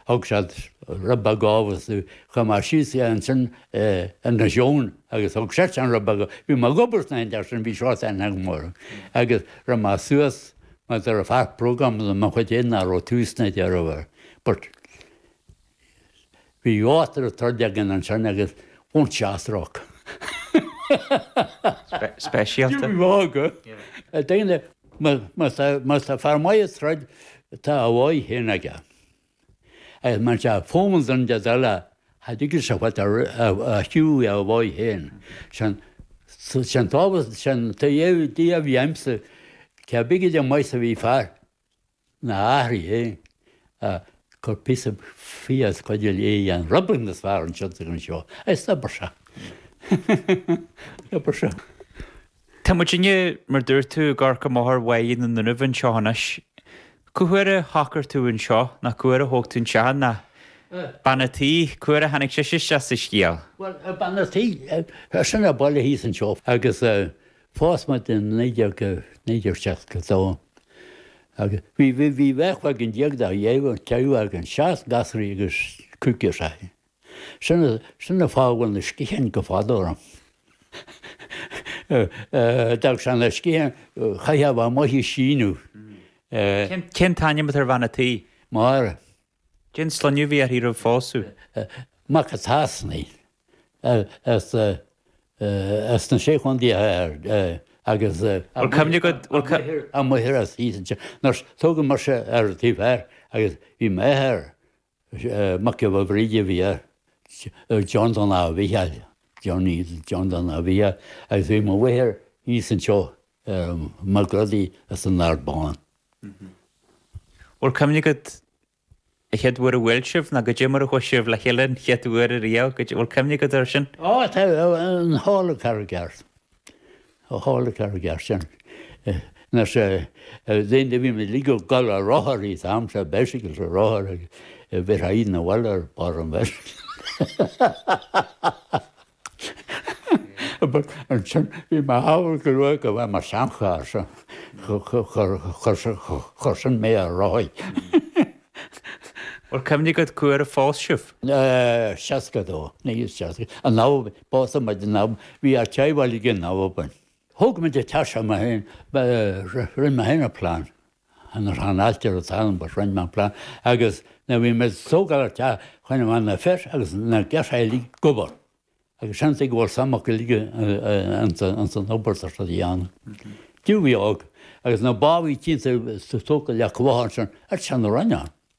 Thug siad rud beag abhus dom, chuir mé síos í ansin ar na seónna agus thug seisean rud beag, bhí mé ag obair sna hAindéis sin, bhí seans agam orthu. Agus raibh mé suas, mar do raibh péire bróg agam de mo chuid fhéin nach raibh tús ná deireadh air. But bhí áit raibh troid againn ansin agus won't she ask rock. speisialta. Bhí bhog. Daoine, má tá fear maith ag troid, tá a dhóigh fhéin aige. Agus más ea, fomhar de ndóigh eile, cha dtigeadh sé fad a shiúil é a dhóigh féin. Sin an tábhacht, sin an t-idé a bhí a'msa, cé bige den mbaghas a bhí fear ina áit féin a' cur píosa fia as cuid a léigh an Rubin is fearr ansiud is anseo, is d'obair sé. D'obair sé. Tá muid inniu, mar dúirt tú, i gCarraig an Mhothair Bhaile na nDúnaibh anseo anois. Cá huair a shocair tú anseo, ná cá huair a thóg tú an teach ná bean a' tí, cá huair a tháinig sise isteach sa scéal? Bhuel, bean a' tí, as an bhaile thíos anseo agus phós muid i naoi déag, naoi déag seasca dó agus bhí deichniúr againn de theaghlach, deich againn, seisear gasúraí agus cúigear sa. Sin a sin a fágadh na sciatháin go fada orm. D'fhág sé na sciatháin caitheamh a bheith ag síneadh. Cén t-ainm atá ar bhean a' tí? Máire. Cén sloinneadh a bhí uirthi roimh phósadh? Mac a' tSasanaigh as na Sé Chontae Thoir agus Bhfuil cuimhne agat, bhfuil cu. Amuigh thoir as thíos ansin. Nurse, Thógamar seo ar an taobh thoir agus bhí m'athair Is é Mac Giolla Bhríde a bhí air, John Dan Mhicheáil, Johnny John Donn Ab Mhicheáil, agus bhí mo mháthair thíos anseo Mag Rodaí as an Ard Bán. Bhfuil cuimhne agat an chéad uair a bhuail sibh ná goidé mar a chuaigh sibh le chéile an chéad uair riamh, goidé, bhfuil cuimhne agat air sin? Ó, tá, an halla Charraig Airt. Ó halla Charraig Airt sin, mar sé de ndóigh bhí muid uilig ag gol ar rothar an t-am sin, bicycles ar rothar a bheith ag gabháil 'na bhaile ar bharr an bheicycle. Ansin bhí mé ag amharc go luath go bhfeadh mo sheancharr so chuir sin mé ar rothaí. Bhuel, cuimhne agat cá huair a phós sibh. 62, 1962. An leabhar. Pósadh muid, bhí ár dteaghlach againn. Thóg muid an teach seo mé féin, ba, rinne mé féin an plean, an an ailtire atá ann, but rinne mé an plean agus nuair a bhí muid ag tógáil an teach, choinnigh mé na fir agus na girseachaí uilig ag obair agus seans é go bhfuil suim acu uilig ins an obair atá siad a dhéanamh. Jimí óg agus na bábhaí tínn sa tóca le cumhacht ansin, a' t-seana Roinn ann.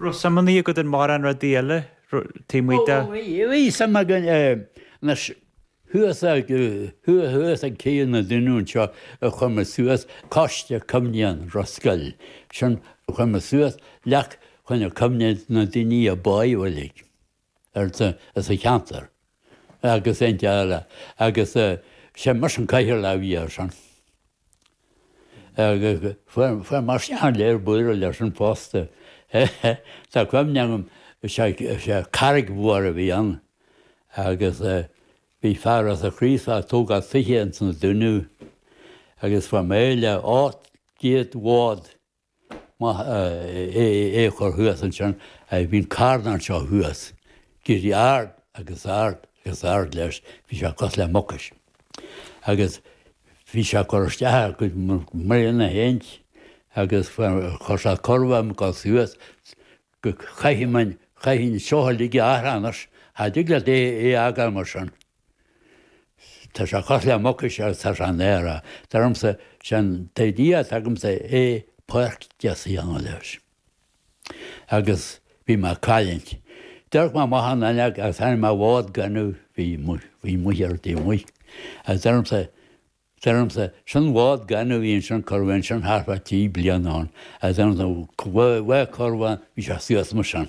raibh suim ar bith agat in mórán rudaí eile taobh amuigh de. Bhí suim againn i, anois, thuas ag, thuaidh thuas ag Céidh na nDúnaibh anseo a chuir muid suas, Coiste Cuimhneacháin Ros Goill, sin a chuir muid suas, leac chun a cuimhneamh na daoine a bádh uilig. ar an sa cheantar agus inti eile agus sé mise an cathaoirleach a bhí ar sin agus fuair mise an léir bualadh leis an fosta. Tá cuimhne agam sé carraig mhór a bhí ann agus bhí fear as an Chraoslach ag tógáil tithe ins na Dúnaibh agus fa méile áit díot bhád Más ea é a chur thuas ansin, bhíonn carn anseo thuas. D'éirigh ard agus ard agus ard leis, bhí sé cosúil le Mucais. Agus bhí sé ag cur isteach ar a gcuid mbliain a sheint agus chuir sé corb ar an gcos thuas go gcaithfidh muinn, chaithfidh an seo a ligeadh athar anois. Cha dtig leat é a fhágáil mar sin. Tá sé cosúil le Mucais, tá sé in aer. Dar liomsa, sé'n t-idea atá agamsa é páirc deas a dhéanamh leis. Agus bhí mé ag caillingt. D'amharc mé amach an fhuinneog agus chonaic mé bád gainimh a bhí amuigh ar taobh amuigh. Agus dar liomsa, dar liomsa, sin bád gainimh a bhí ansin curtha bhí ansin thart fá trí bliana ann. Agus dar liomsa, bhí bheith curtha bhí sé suas mar sin.